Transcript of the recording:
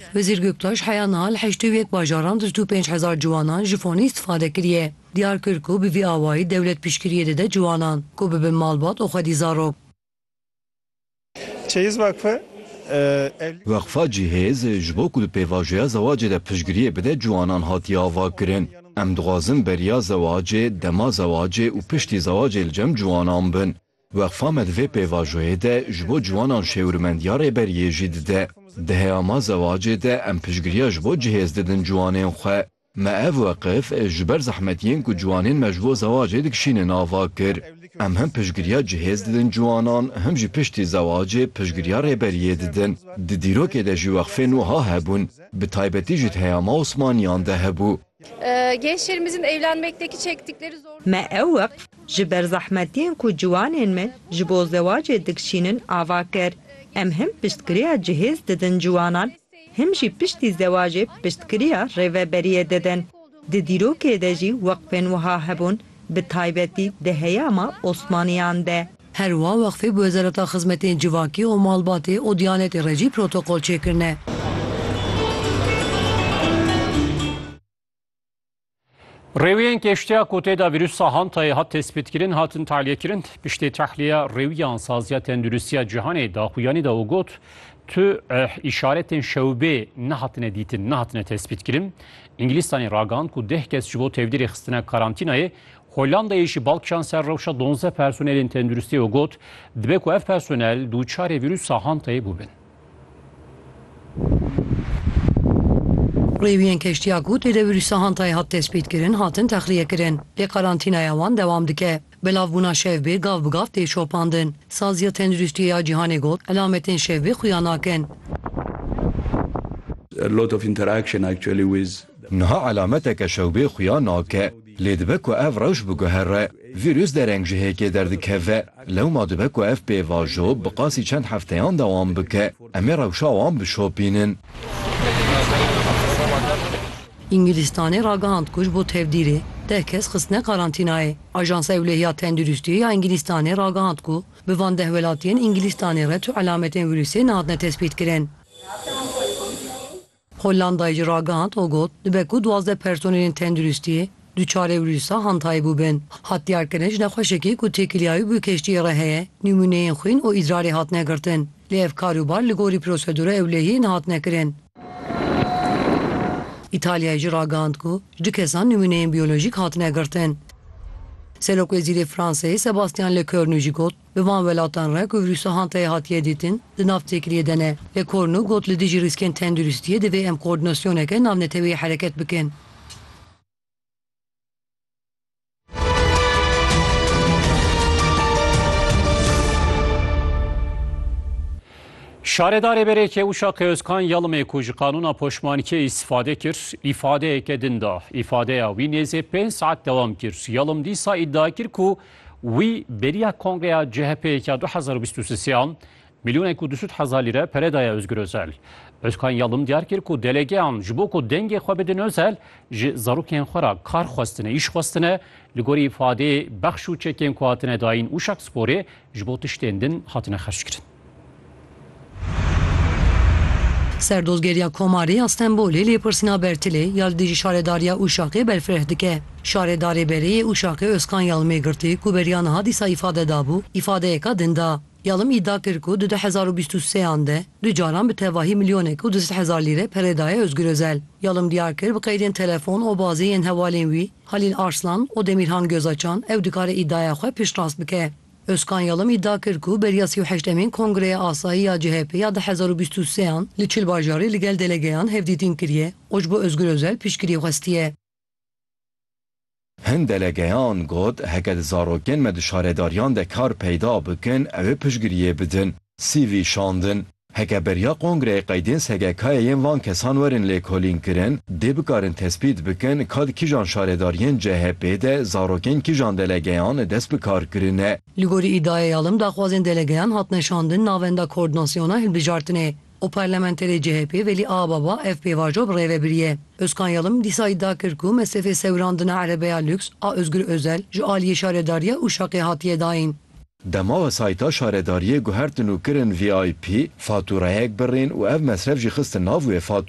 Wezîr Göktaş heya niha li heştê û yek bajaran di du û pênc hezar ciwanan ji fonê îstîfade kiriye. Diyar kir ku bi vî awayî dewlet piştgiriyê dide ciwanan ku bibin malbat û xwedî zarok. Çeyiz Vakfı evlî. Weqfa Cihêz ji bo ku di pêvajoya zewacê de piştgiriyê bide ciwanan hatiye avakirin. Em dixwazin beriya zewacê, dema zewacê û piştî zewacê li cem ciwanan bin. Weqfa me di vê pêvajoyê de ji bo ciwanan şêwirmendiya rêberiyê jî dide. Di heyama zewacê de em piştgiriya ji bo cihêz didin ciwanên xwe. Me ev weqif ji ber zehmetiyên ku ciwanên me ji bo zewacê dikişînin ava kir. Em him piştgiriya cihêz didin ciwanan, him jî piştî zewacê piştgiriya rêberiyê didin. Di dîrokê de jî weqfên wiha hebûn, bi taybetî jî di heyama Osmaniyan de hebû. Gençlerimizin evlenmekteki çektikleri zorluklar. Me ew weqf ji ber zehmetiyên ku ciwanên me ji bo zewacê dikşînin ava kir. Em him piştgiriya cihêz didin ciwanan, him jî piştî zewacê piştgiriya rêveberiyê didin. Di dîrokê de jî weqfên wiha hebûn Bi taybetî di heyama Osmaniyan de. Her wiha Weqfê bi Wezareta Xizmetên Civakî û Malbatê û Diyanetê re jî protokol çêkirine. Rêwiyên kêştiya ku tê de vîrusa Hantayê hat tespîtkirin hatin tahlîyekirin. Piştî tahliye rêwiyan Saziya Tenduristiya Cîhanê daxuyanî da û got, Tu îşaretên şewbê nehatine dîtin, nehatine tespîtkirin. Îngilîstanê ragand ku deh kes ji bo tevdîrê xistina karantînayê Hollandayê jî bal kişand ser rewşa donzdeh personelên tenduristiyê û got, dibe ku ev personel dûçarê vîrûsa Hantayê bûbin. Rêwiyên keştiya ku tê de vîrûsa Hantayê hat destpêtkirin, hatin texliyekirin, lê karantînaya wan dewam dike. Belavbûna şevbê gav bi gav tê şopandin. Saziya Tenduristiyê ya Cîhanê got, Elametên şevbê xuya nakin. Niha elameteke şewbê xuya nake. Lê dibe ku ev rewş biguhere. Vîrus dereng ji hêkê derdikeve. Lewma dibe ku ev pêvajo bi qasî çend hefteyan dewam bike. Em ê rewşa wan bişopînin. Îngilîstanê ragihand ku ji bo tevdîrê deh kes xistine karantînayê. Ajansa Ewlehiya Tenduristiyê ya Îngilîstanê ragihand ku bi van deh welatiyên Îngilîstanê re tu elametên vîrusê nehatine tespîtkirin. Hollandayê jî ragihand û got, Dibe ku duwazdeh personelên tenduristiyê Duçarê vîrûsa hantayê bûbin. Hat diyarkirin ji nexweşekî ku têkiliyayî bi keştiyê re heye, nîmûneyên xwîn û îdrarê hatine girtin. Lê ev kar û bar li gorî prosedûra ewlehiyê nehatine kirin. Îtalyayê jî ragihand ku ji du kesan nîmûneyên biyolojîk hatine girtin. Serokwezîrê Fransayê Sebastyan Lecornu jî got, Bi van welatan re ku vîrûsa hantayê hatiye dîtin, di nav têkiliyê de ne. Lecornu got li dijî rîskên tenduristiyê divê em koordinasyoneke navneteweyî hereket bikin. Şaredarê Berêkê Uşak Özkan Yalımê ku ji qanûna poşmanikê îstifade kir, îfadeyeke din da. Îfadeya wî nêzê pênc saet dewam kir. Yalım dîsa îdia kir ku wî beriya kongreya CHP'ê ya 2023 an Milyonek û du sed hezar lîre pere daye Ozgur Ozel. Ozkan Yalım diyar kir ku delegeyan ji bo ku dengê xwe bidin Ozel, ji zarokên xwe re kar xwestine, îş xwestine, li gorî ifadeyê bexş û çekên ku hatine dayîn Uşak Sporê ji bo tiştên din hatine xerckirin. Serdozgeriya Komarê ya Stenbolê lêpirsîna Bertilê ya li dijî Şaredariya Uşakê berfireh dike. Şaredarê berê yê Uşakê Ozkan Yalımê girtî ku beriya niha dîsa îfade dabû, îfadeyeka din da. Yalom îdia kir ku di du hezar û bîst û sê an de du caran bi tevahî milyonek û du sed hezar lîre pere daye Ozgur Ozel. Yalom diyar kir bi qeydên telefon û bazê yên hevalên wî Halîl Arslan û Demîrhan Gözaçan ew dikare îdiaya xwe piştrast bike. Özkan Yalom îdia kir ku beriya sî û heşt emîn Kongreya Asayî ya CHP'ê ya du hezar û bîst û sê an li çil bajarî li gel delegeyan hevdîtîn kiriye û ji bo Ozgur Ozel piştgirî xwestiye. Hin delegeyan got, heke di zarokên me di şaredariyan de kar peyda bikin, ew ê piştgiriyê bidin. CV şandin. Heke beriya kongreyê qeydên SGK'ê yên van kesan werin lêkolînkirin, dê bikarin tespît bikin ka di kîjan şaredariyên CHP'ê de zarokên kîjan delegeyan dest bi kar kirine. Li gorî îdiaya ya Alim daxwazên delegeyan hatine şandin navenda Koordinasyona Hilbijartinê. û parlamenterê CHP'ê Velî Aababa ev pêvajo bi rêve biriye. Ozkan Yalım dîsa îdia kir ku mesrefê sewirandina erebeya lûks a Ozgur Ozel ji aliyê şaredariya Uşaqê hatiye dayîn. Dema wesayîta şaredariyê guhertin û kirin VIP, fatûrayek birîn û ev mesref jî xistin nav wê fatûre.